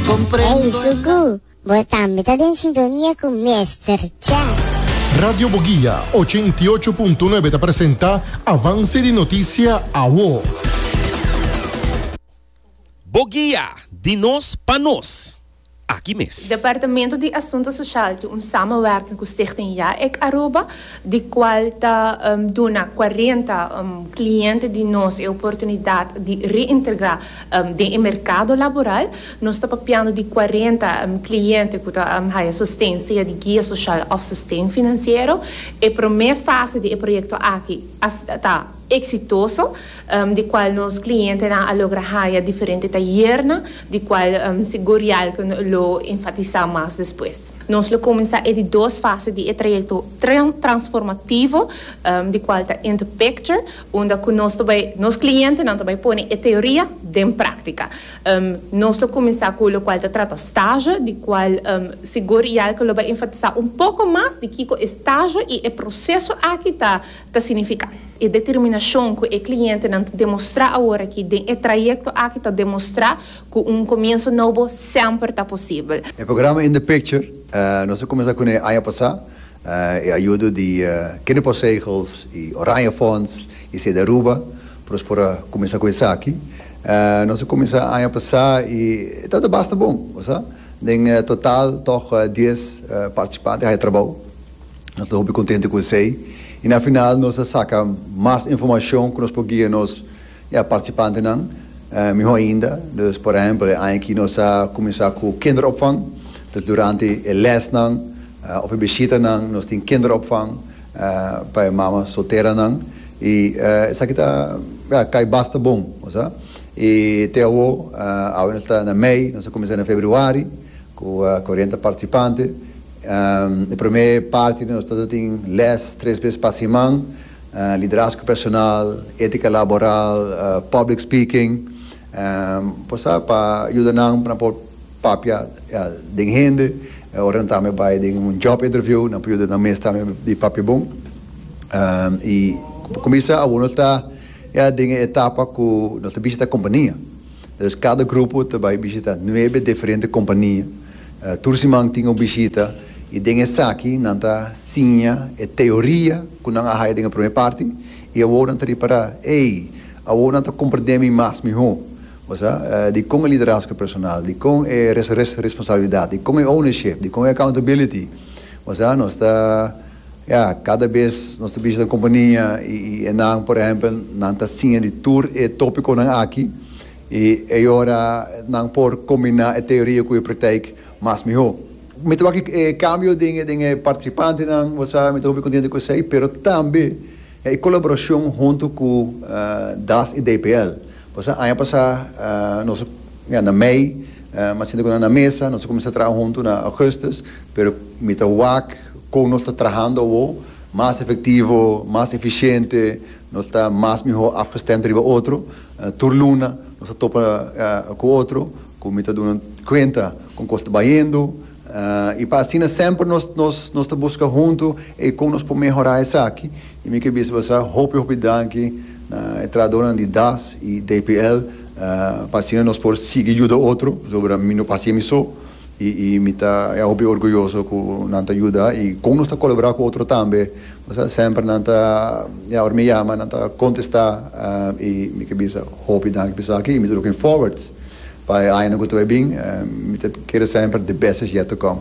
Ey Suku, bo tambe ta den sintonia cu Mester Chef. Radio Boguia ochenta i ocho punto nuebe ta presenta Avance di noticia awo. Boguia, di nos pa nos. Aki mes. Departamento di Asunto Social tin un samenwerking cu Stichting Yaec Aruba, di cual ta duna cuarenta cliente di nos e oportunidad di reintegra Den e merkado laboral nos ta papiando di cuarenta cliente cu ta haya sosten sea di guia social of sosten financiero. E prome fase di e proyecto aki a ta exitoso di cual nos clientenan a logra haya diferente tayernan di cual sigur Yalke lo enfatisa mas despues. Nos lo cuminsa e di dos fase di e trayecto transformativo di cual ta Interpicture unda cu nos ta bay, nos clientenan ta bay pone e teoria den practica. Nos lo cuminsa cu locual ta trata stage, di cual sigur Jelke lo bay enfatisa un poco mas di kico e stage y e proceso aki ta ta significa. E determinacion cu e clientenan ta demostra aworaki den e trayecto aki ta demostra cu un comienso nobo semper ta posibel. E programa In The Picture nos a cuminsa cu nan e aña pasa. E ayudo di Kinderpostzegels y Oranjefonds y Sede Aruba pa nos por a cuminsa cu esaki. Nos a cuminsa aña pasa y e tabata basta bon. Bosa? Den total tog dies participante a haya trabao. Nos ta hopi contento cu esey y na final nos a saca mas informacion cu nos por guia nos. E participantenan, miho ainda, dus por ehempel e aña aki nos a cuminsa cu kinderopvang, dus durante e lesnan of e bishitanan nos tin kinderopvang pa e mama solteranan y esaki ta cay basta bon, osa y te awo, awe nos ta na mei, nos a cuminsa na februari cu cuarenta participante, e prome parti di nos ta tin les tres bes pa siman. Liderazgo personal, ética laboral, public speaking, bo sa pa yuda nan pa nan por papia den hende, ora nan tambe bai den un job interview nan por yuda nan mes tambe di papia bon y kumisa awo nos ta ya den e etapa ku nos ta bishita kompania. Dus kada grupo ta bai bishita nuebe diferente kompania. Tur siman tin un bishita i den esaki nan ta siña e teoria ku nan a haya den e promé parti i awor nan ta ripará, Ey, awor nan ta komprendé mi mas mihó. Bo sa dikon e liderazgo personal, dikon e responsabilidat, dikon e ownership, dikon e accountability. Bo sa nos ta. Ya, kada bes nos ta bishita kompania i enan, por ehèmpel, nan ta siña di tur e tópikonan aki i ei ora nan por kombiná e teoria ku e praktijk mas mihó. Mi ta wak e kambio den e partisipantenan, bo sa, mi ta hopi kontentu ku esei, pero tambe e kolaborashon huntu ku das i DPL. Bo sa, aña pasá nos a, ya, na mei, mi a sinta ku nan na mesa, nos a kuminsá traha huntu na ògùstus, pero mi ta wak. Kon nos ta trahando awo mas efektivo, mas efisiente, nos ta mas mihó afgestemd riba otro. Tur luna nos ta topa ku otro ku mi ta duna kuenta kon kos ta bayendo i pa asina semper nos nos ta buska huntu ei kon nos por mehorá esaki. I mi ke bisa bo sa hopi hopi danki na e trahadornan di das i DPL pa asina nos por sigui yuda otro pasobra mi no pa hasié mi so. I i mi ta hopi orguyoso ku nan ta yuda i kon nos ta kolaborá ku otro tambe. Bo sa semper nan ta, ya, ora mi yama nan ta kontestá i mi ke bisa hopi danki pa esaki i mi ta looking forward pa e añanan ku ta bai bin. Mi ta kere semper the best is yet to come.